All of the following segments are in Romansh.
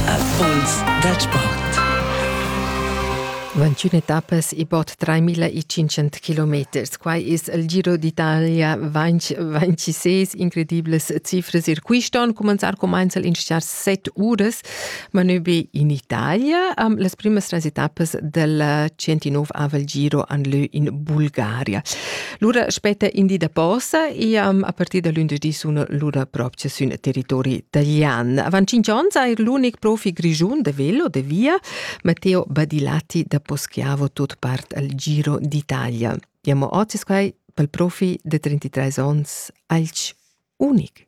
Affons da sport. 21 etappas e bod 3500 kilometers. Quai es il Giro d'Italia 26. Incredibles cifras. Ir quist'on cumanzar cumainza'l in schar 7 uras, ma nö be in Italia. Um, las primas tres etappas del 109 aval Giro han lö in Bulgaria. Lura spetta in di da posa e um, a partir da lunedì sun lura propria sün territori taglian. Avant 5 ans ha er l'unic profi grigiun da velo de via, Matteo Badilati da Poschiavo tot part al Giro d'Italia. Diamo ocis quai pel profi de 33 ans alch unic.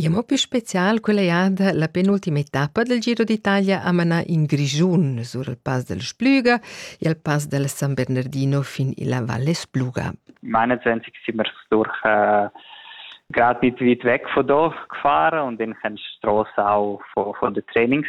E mo più special quella jada la penultima etappa del Giro d'Italia a manar in Grischun sur il Pass del Splüga e al Pass del San Bernardino fin illa Valle Spluga. Meinetwegen sind wir durch äh, gerade weit weg von da gefahren und dann kannst du die Straße auch von, von den Trainings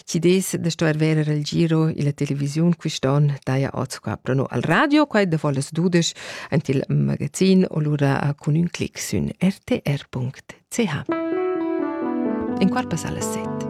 Chi dess da stuer verer il giro illa televisiun quist'on daja oz qua prono al radio, quai davo las dudesch ant il magazin o lura cun ün clic sün rtr.ch. In quart passa las set.